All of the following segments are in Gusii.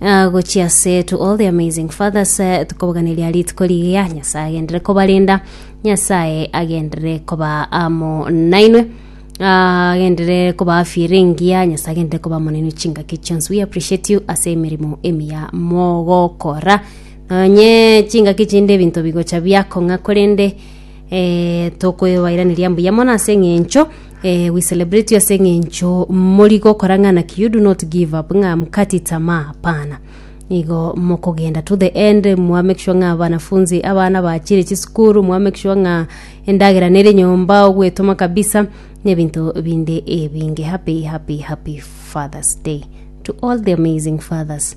Ah, gochia ase to all the amazing fathers eh, tukoboganeria rituko rigiya nyasaye agendere kobarinda nyasaye agendere koba amo nainwe Ah, agendere koba afire engiya nyasaye agendere koba amo nainwe chingaki chionsi we appreciate you ase emeremo emiya mogokora nonye chingaki chinde ebinto bigocha biakong'a korende eh, tokoebairaneria mbuya mono ase eng'encho eh, we celebrate you ase eng'encho mori gokora ng'ana ki you do not give up ng'a mkati tamaa hapana igo mokogenda to the end mwa make sure ng'a abanafunzi abana bachire chisukuru mwa make sure ng'a endagera nere nyomba ogwetoma kabisa nebinto binde ebinge happy happy happy fathers day to all the amazing fathers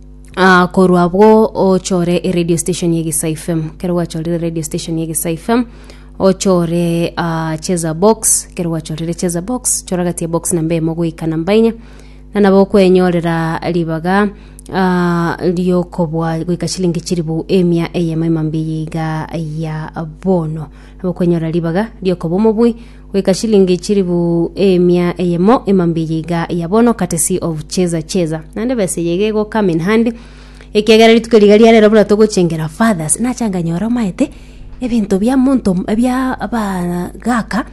Ah, korwa abwo ochore eradio station ya Gisa FM. Kero gwachorire radio station ya Gisa FM, ochore ah, cheza box. Kero gwachorire cheza box, chora gati ya box namba emo goika namba inya. Na nabo okwenyorera ribaga ah, riokobwa goika chilingi chiribu emia eyemo emambia iga ya bono. Nabo okwenyorera ribaga riokobwa omobui goika chilingi chilifu emia eyemo ema mbiya iga ya bono katesi of cheza cheza naende besa eye iga ego come in hand ekiagera rituko riga ria rero buna togochengera fathers nachanga nyore omaete ebinto bia monto bia aba gaka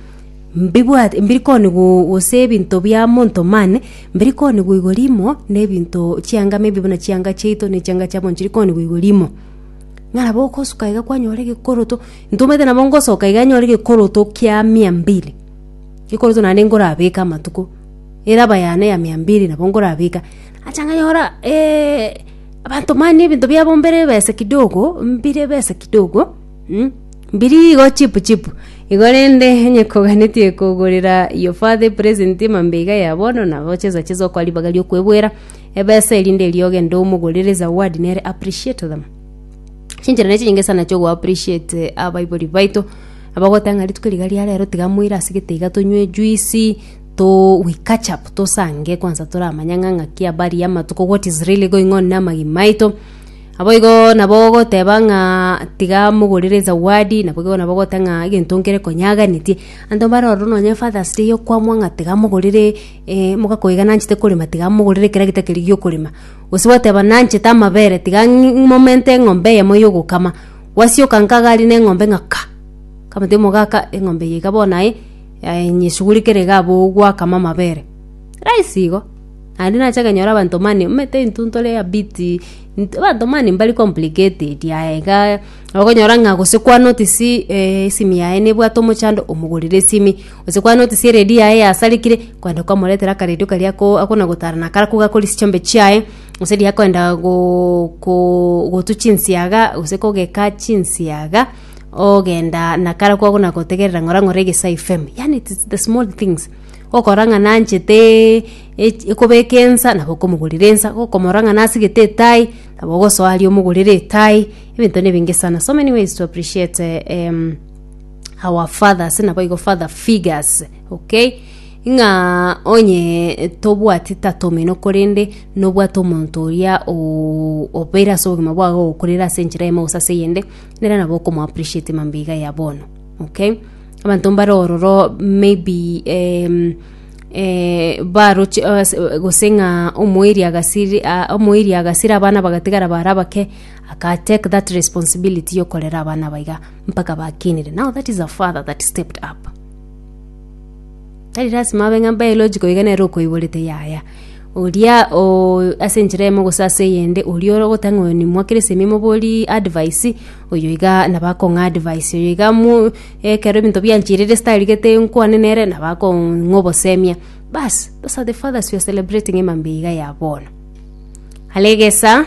mbibwate mbiri koni go gose ebinto bia monto mane mbiri koni go igoro imo na ebinto chianga maybe buna chianga chiaito na chianga chiabo nchiri koni go igoro imo ng'a nabo ogosuka iga kwanyora egekoroto. Ntomanyete nabo ngosoka iga nyore gekoroto kia mia mbili, gekoroto naende nkorabeke amatuko, eraba yane ya mia mbili nabo nkorabeka. Nacha nkanyora abanto mani ebinto biabo mbire ebesa kidogo, mbire ebesa kidogo, mbiri igo chipu chipu. Igo rende onye koganetie kogorera your father epresent emambe iga ya bono, nabo chesa chesa okoa ribaga riokwebwera ebesa erinde erio ogende omogorere ezawadi nere appreciate them. Chinchera ne chinyinge sana chio go appreciate abaibori baito abagoteba ng'a rituko riga ria rero tiga moire ase getaiga tonywe ejuice to we catch up tosange kwansa toramanye ng'a ng'aki habari ya amatuko what is really going on na amagima aito. Naboigo nabo ogoteba ng'a tiga mogorere ezawadi nabo igo nabo ogoteba ng'a egento nkere konyaganeti anto mbare ororo nonye father's day okwamwa ng'a tiga mogorere mogakoiga nanchete korema tiga mogorere kera gete keria giokorema. Gose gwateba, Nanchete amabere, tiga ng'imomente eng'ombe eyemo y'ogokama. Gwasioka nkaga aria na eng'ombe ng'a ka! Nkamotebia omogaka, eng'ombe eye iga bono aye, eh, nyesugurikere iga abwo gwakama amabere. Rahisi igo. Naende nache kenyora abanto mani omanyete intwe ntore a bit, int- abanto mani mbari complicated aye iga, okonyora ng'a gose kwa notice esimi yaye nebwate omochando, omogorera esimi. Gose kwa notice eredi yaye yasarikire, kwenda kwamoretera akaredio karia ako akona gotara na akara koga akore chichombe chiaye, gose riria akoenda go- go- gotu chinsiaga gose kogeka chinsiaga, ogenda na akara ko akona gotegerera ng'ora ng'ora egesae FM. Yaani it is the small things, okora ng'a nanchete ech- ekobeka ensa nabo okomogorera ensa, okomora ng'a nasigete etai, nabo ogosoa aria omogorere etai, ebinto na ebinge sana, so many ways to appreciate em. our fathers naboigo father figures okay ng'a onye tobwati tata omino korende nobwate omonto oria oooo obeire ase obogima bwago ogokurera ase enchera eyemo gose ase eyende nere nabo okomo appreciate mambia iga bono okay. Abanto mbare ororo maybe em baroche ase gose ng'a omoiri agasiri aa omoiri agasira abana bagatigara bare abake aka take that responsibility yokorera abana aba iga. mpaka bakinire. Now that is a father that stepped up. Tari lazima abe ng'a biological iga nere okoiborete yaya. Oria o ase enchera emo gose ase eyende oria ore ogotanga oyo nimwa kera ase emimo bori advice oyo iga naba akong'a advice oyo iga mu ekero ebinto bianchirire ase tarigete nkwane nere naba akong'a obosemia. Bas those are the fathers we are celebrating emambia iga ya bono. Are egesa.